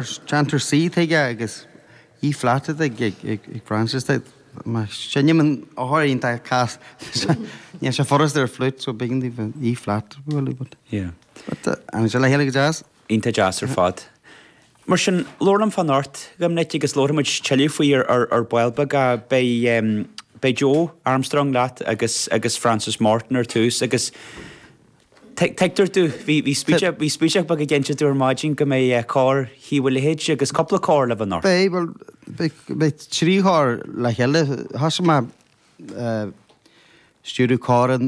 Déantar saoth aige agus E flat atá ag Frances de. Má sheinnim an ábhar í dá cás, níl sé furast ar an flute so b'éigean di an E flat a bhualadh but. Yeah. But tháinig sé le chéile go deas. Iontach deas ar fad. Mar sin, labhair liom fá anocht, a Dhoimnic, agus labharfaidh muid tuilleadh faoi ar ball beag a. Beidh Joe Armstrong leat agus Frances Morton ar tús agus. Tuigtear dom, bhí spúinseach beag ag déanamh tú ar maidin go mbeidh Cór Thaobh a' Leithid sé agus cúpla cór le bheith anocht. Beidh, bhuel beidh trí chór le chéile, thosaigh mé ag stiúradh cór i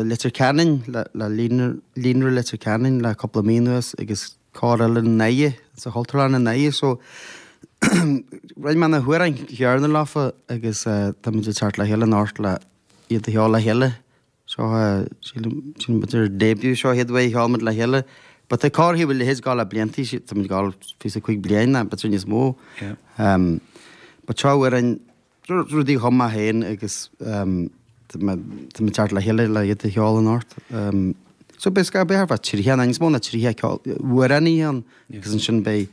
Leitir Ceanainn le Líonra Leitir Ceanainn le cúpla mí anuas agus cór eile i nDoire, sa Chultúrlann i nDoire so roinn mé na hamhráin chéanna leofa agus táimid ag teacht le chéile anocht le iad a cheol le chéile. Seo é, sílim, sílim b'fhéidir ár début seo an chéad uair a cheol muid le chéile. But tá Cór Thaobh a' Leithid ag gabháil le blianta, sí- tá muid ag gabháil le fiche is a cúig bliain nó b'fhéidir níos mó. Ehm, but seo amhráin, ru- rudaí a chum mé fhéin agus, ehm, tá me- tá muid ag teacht le chéile le iad a cheol anocht. Ehm, so beidh scai-, b'fhéidir thart fá tríocha, nó níos mó ná tríocha ceol- amhránaí ann. agus ansin beidh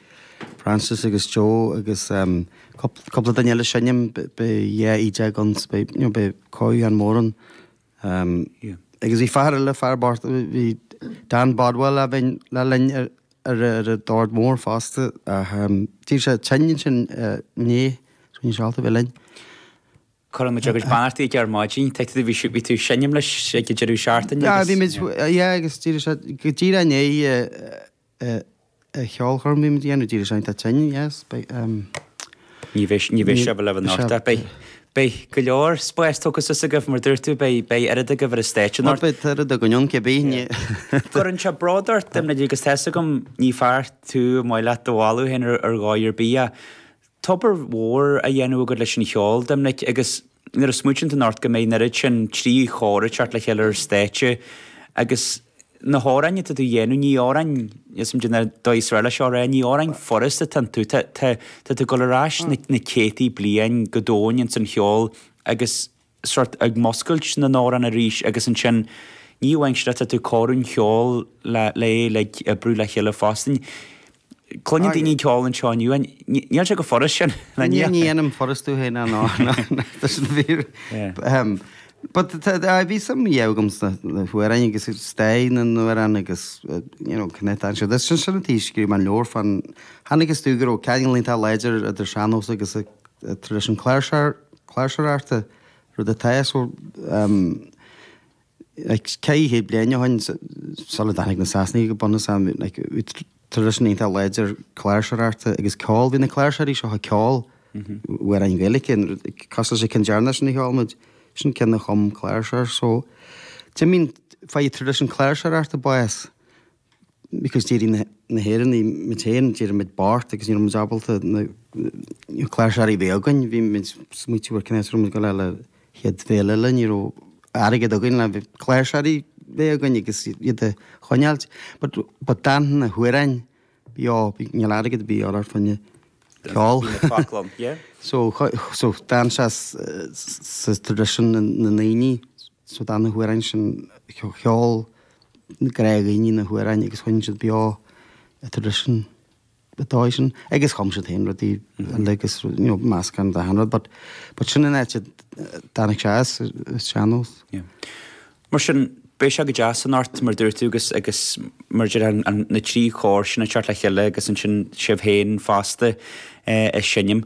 Frances agus Joe agus cúpla duine eile ag seinm beidh dhá fhidil againn so beidh, you know, beidh cóiriú ann mór ann. Agus bhí fear eile, faraor, bhí Dan Bodwell le bheith linn ar ar an dord mór fosta ach d'éirigh sé tinn ansin inné so níl sé ábalta bheith linn. Cuireann muid ár gcuid beannachtaí chuige ar maidin, dúirt tú bhí sibh bhí tú ag seinm leis ag an deireadh seachtaine? Bhí muid, yeah, agus d'éirigh sé go díreach inné a cheolchoirm bhí muid ag déanamh dílis againn tá tinn yes beidh Ní bheidh ní bheidh sé libh anocht beidh beidh go leor spáis tógtha suas agaibh mar a dúirt tú beidh beidh oiread agaibh ar an stáitse anocht beidh oiread againn ann cibé an gcuireann sé bród ort a Dhoimnic agus tá a fhios agam ní fear tú ar mhaith leat do mholadh féin ar dhóigh ar bith a tá obair mhór á dhéanamh agat leis an cheol, Doimnic, agus nuair a smaoitíonn tú anocht go mbeidh an oiread sin trí chór ag teacht le chéile ar stáitse agus na hamhráin atá tú a dhéanamh, ní amhráin, níl a fhios agam caidé an dóigh is fearr le seo a rá, ní amhráin furasta atá iontu, tá, tá, tá tú ag dul ar ais na céadtaí bliain go domhain ins an cheol agus sort ag múscailt na n-amhrán arís agus ansin ní amháin sin ach tá tú ag cur an cheoil le é le oibriú le chéile fosta. Cluineann daoine an ceol anseo inniu ach níl sé chomh furast sin le Ní ní dhéanaim furast tú fhéin ná tá sin fíor. But bhí suim ariamh agam sna hamhráin agus stair na n-amhrán agus you know connections agus sin an t-aois go raibh an leabhar fan tháinig is tú go raibh ceangal iontach láidir idir sean-nós agus traidisiún na cláirseoireachta, rud atá so ceithre chéad bliain ó shin sula dtáinig na Sasanaigh go bunúsach, bhí traidisiún iontach láidir cláirseoireachta agus ceol, bhí na cláirseoirí seo ag ceol amhráin Ghaeilge, cosúil leis an cheann deireanach sin a cheol muid, sin an ceann a chum cláirseoir so d'imigh, fuair traidisiún cláirseoireachta bás because d'éirigh na hÉireannaigh muid féin, d'éirigh muid bocht agus ní raibh muid ábalta na cláirseoirí a bheith againn, bhí muid smaoitiú ar cá has a raibh muid ag dul a fháil an chéad bhéile eile, ní raibh airgead againn le bheith cláirseoirí a bheith againn agus iad a choinneáilt. But but d'fhan na hamhráin bhí á, níl airgead ar bith a dhíobháil ar dhuine ceol. Bhí na cloc lom, yeah. So so d'fhan sé sa tradition na ndaoine, so d'fhan na hamhráin sin, cheol, na gnáthdhaoine na hamhráin agus choinnigh siad beo an tradition an dóigh sin agus chum siad féin rudaí eile agus you know meascán den dá chineál rud but but sin an áit a dtáinig sé as is sean nós. Yeah. Mar sin, beidh sé go deas anocht mar a dúirt tú agus agus mar a deir an an na trí chór sin ag teacht le chéile agus ansin sibh féin fosta eh ag seinm.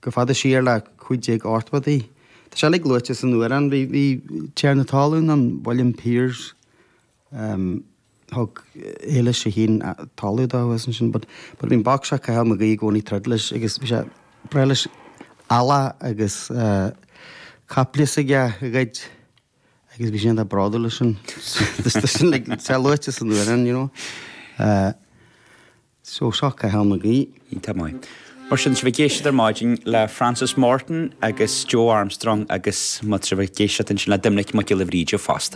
go fada siar le 1580. Tá sé uilig luaite san amhrán. Bhí tiarna talún ann, William Piers, thug Eilís a hAon talamh dó agus ansin but but bhí an boc seo Cathal Mag Aoidh i gcónaí troid leis agus bhí sé breith leis eallach agus caiple s'aige a ghoid agus bhí sé an-bhródúil as sin sin sé luaite san amhrán you know. Uh, so so Cathal Mag Aoidh. Iontach maith. Mar sin, tá sibh ag éisteacht ar maidin le Frances Morton agus Joe Armstrong agus má tá sibh ag éisteacht ansin le Doimnic Mac Giolla Bhríde fosta.